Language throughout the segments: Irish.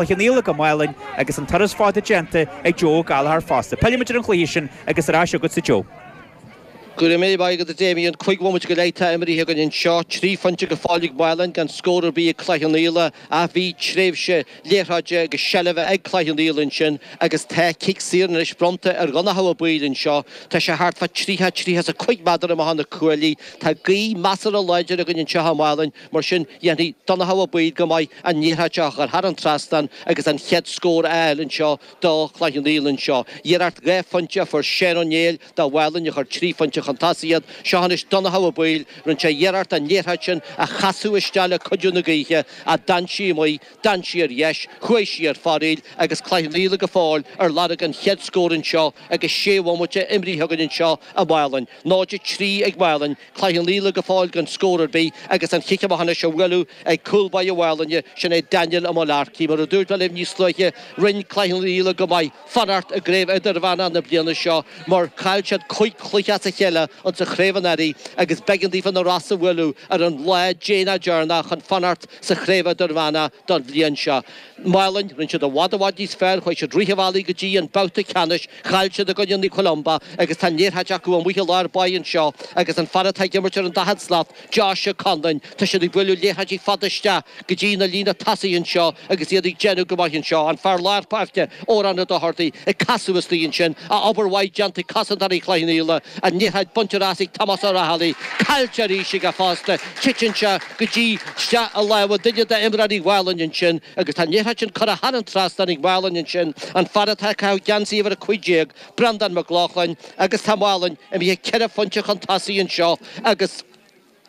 Cloich Cheann Fhaola go Málainn agus an turas fada déanta ag Joe Ó Gallchóir fosta. Pillfimid ar an chluiche sin agus ar ais agatsa Joe. Go raibh maith agat a Damien, cúig bhomaite go leith atá imrithe againn anseo, trí phointe go fóill ag Málainn gan scór ar bith ag Cloich Cheann Fhaola ach bhí tréimhse liathróide agus seilbhe ag Cloich Cheann Fhaola ansin agus tá cic saor anois bronnta ar Dhonncha Ó Baoill anseo, tá sé thart fá 30, 35 méadar amach ó na cuaillí, tá gaoth measartha láidir againn anseo i Málainn. Mar sin, dhéanfaidh Donncha Ó Baoill go maith an liathróid seo a chur thar an trasnán agus an chéad scór a fháil anseo do Chloich Cheann Fhaola anseo. Iarracht dhá phointe a fuair Seán Ó Néill do Mhálainn a chuir trí phointe chun tosaigh iad. Seo anois Donncha Ó Baoill, rinne sé iarracht an liathróid sin a chasadh isteach le cuidiú na gaoithe ach d'fhan sí amuigh, d'fhan sí ar dheis, chuaigh sí ar fóraoil agus Cloich Cheann Fhaola go fóill ar lorg an chéad scór anseo agus sé bhomaite imrithe againn anseo i Málainn. 0-3 ag Málainn. Cloich Cheann Fhaola go fóill gan scór ar bith agus an chic amach anois á bhualadh ag cúl báire Mhálainne, sin é Daniel Ó Mullarkey. Mar a dúirt mé libh níos luaithe, rinne Cloich Cheann Fhaola go maith fanacht i gCraobh Idirmheánach na bliana seo mar chaill siad cúig chluiche as a chéile ins an Chraobh anuraidh agus b'eigean daofa na Rosa a bhualadh ar an lá déanach deireanach chun fanacht sa Chraobh Idirmheánach don bhliain seo. Málainn, rinne siad i bhfad i bhfad níos fearr, chuaigh siad rith an bhealaigh go dtí an babhta ceannais, chaill siad i gcoinne Naomh Columba agus tá an liathróid acu amuigh i lár báire anseo agus an fear atá ag imirt ar an daichead slat, Josh Conlon, tá siad ag bualadh liathróidí fada isteach go dtí na líne tosaigh anseo agus iad ag déanamh go maith anseo. An fear lár páirce, Odhrán Ó Dochartaigh, ag casadh istigh ansin, ach obair mhaith déanta ag cosantóirí Chloich Cheann Fhaola, an liathróid bainte as ag Tomás O Rahilly, caillte arís aige fosta. Titeann sé go dtí isteach i lámha duine d'imreoirí Mhálainn ansin agus tá an liathróid sin curtha thar an trasnán ag Málainn ansin, an fear atá ag caitheamh geansaí uimhir 15, Breandán Mac Lochlainn, agus tá Málainn imithe ceithre phointe chun tosaigh anseo agus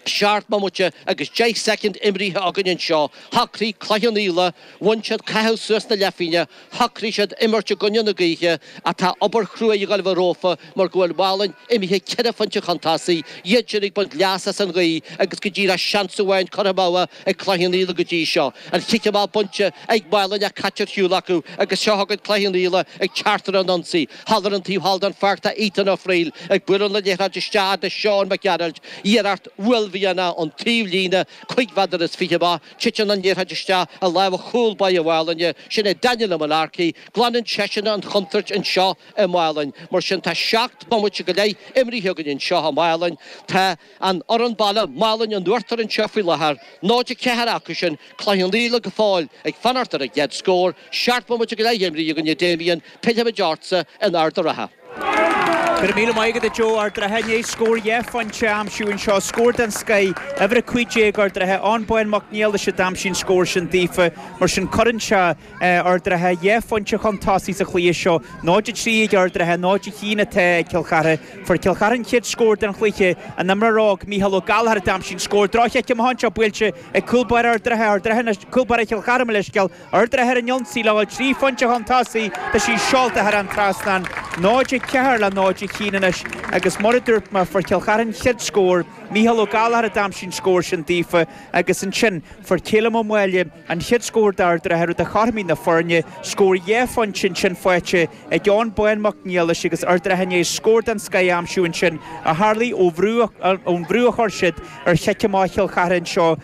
seacht mbomaite agus deich soicind imrithe againn anseo. Shocraigh Cloich Cheann Fhaola, bhain siad caitheamh suas na leithphingne, Shocraigh siad imirt i gcoinne na gaoithe ach tá obair chrua ag gabháil a bheith rompu mar go bhfuil Málainn imithe ceithre phointe chun tosaigh, iad sin ag baint leas as an ghaoth agus go díreach seans amháin curtha amú ag Cloich Cheann Fhaola go dtí seo. An chic amach bainte ag Málainn ach caite ar shiúl acu agus seo chugainn Cloich Cheann Fhaola ag teacht ar an ionsaí. Thall ar an taobh thall den pháirc tá Ethan Ó Fríl ag bualadh na liathróide isteach do Seán Mac Gearailt, iarracht uaillmhianach ón taobhlíne cuig mheadar is fiche amach, Titeann an liathróid isteach i lámha chúl báire Mhálainne, sin é Daniel Ó Mullarkey. Glanann seisean an chontúirt anseo i Málainn. Mar sin, tá seacht mbomaite go leith imrithe againn anseo i Málainn. Tá an fhoireann baile, Málainn, in uachtar anseo faoi láthair, 0-4 acu sin. Cloich Cheann Fhaola go fóill ag fanacht ar a gcéad scór. Seacht mbomaite go leith imrithe againn a Damien, pillfimid ortsa in Ard an Rátha. Go raibh míle maith agat a Joe, Ard an Rátha i ndiaidh scór dhá phointe a aimsiú anseo, scór den scoith, uimhir a cúig déag Ard an Rátha, Eoin Bán Mac Niallais a d'aimsigh an scór sin daofa, mar sin cuireann seo Ard an Rátha dhá phointe chun tosaigh sa chluiche seo, náid a trí ag Ard an Rátha, náid a haon atá ag Cill Chartha. Fuair Cill Chartha an chéad scór den chluiche, an t-imreoir óg Micheál Ó Gallchóir a d'aimsigh an scór drochchic amach anseo buailte ag cúlbáire Ard an Rátha, Ard an Rátha, Cúlbáire Chill Chartha mo leithscéal, Ard an Rátha ar an ionsaí le ghabháil 3 phointe chun tosaigh, tá sí seolta thar an trasnán, 0-4 le 0-1 anois, agus mar a dúirt mé, fuair Cill Chartha an chéad scór, Micheál Ó Gallchóir a d'aimsigh an scór sin daofa, agus ansin fuair Callum Ó Máille an chéad scór d'Ard an Rátha, rud a chothromaigh na foirne, scór dhá phointe ansin faighte ag Eoin Bán Mac Niallais agus Ard an Rátha i ndiaidh scór den scoth a aimsiú ansin, a tharlaigh ón bhrú a chuir siad ar chic amach Chill Chartha anseo.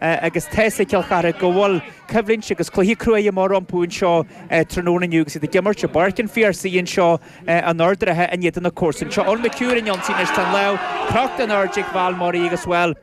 agus tá a fhios ag Cill Charthaigh go bhfuil coimhlint agus cluiche cruaidh amach rompu anseo tráthnóna inniu agus iad ag imirt i bPáirc an Phiarsaigh anseo in Ard an Rátha in éadan na gcomharsan seo Eoin McHugh ar an ionsaí anois tá an lámh crochta in airde ag Val Murray agus bhuel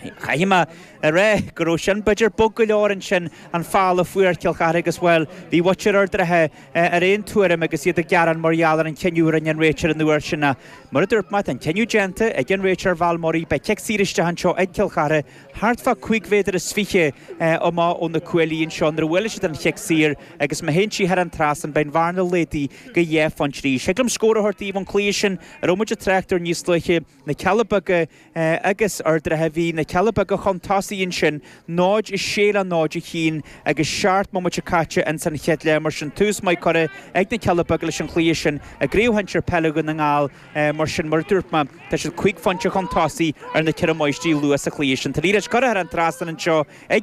chaithfidh mé a rá go raibh sin b'fhéidir bog go leor ansin an foul a fuair Cill Charthaigh agus bhuel bhí muintir Ard an Rátha ar aon tuairim agus iad ag gearán mar gheall ar an chinneadh a rinne an réiteoir an uair sin ach mar a dúirt mé tá an cinneadh déanta ag an réiteoir Val Murray beidh cic saor isteach anseo ag Cill Charthaigh thart fá cúig mhéadar is fiche amach ó na cuaillí anseo nuair a bhuaileann siad an chic saor agus má théann sí thar an trasán beidh an bhearna laghdaithe go dhá phointe arís. Thig liom scór a thabhairt daoibh ón chluiche sin a raibh muid ag trácht air níos luaithe, na Cealla Beaga agus Ard an Rátha. Bhí na Cealla Beaga chun tosaigh ansin, 0-6 le 0-1 agus seacht mbomaite caite ins an chéad leath mar sin tús maith curtha ag na Cealla Beaga leis an chluiche sin i gCraobh Shinsir Peile Dhún na nGall, Mar sin, mar a dúirt mé, tá siad 5 phointe chun tosaigh ar na 4 máistrí luath sa chluiche sin. Tá an liathróid curtha thar an trasnán anseo ag.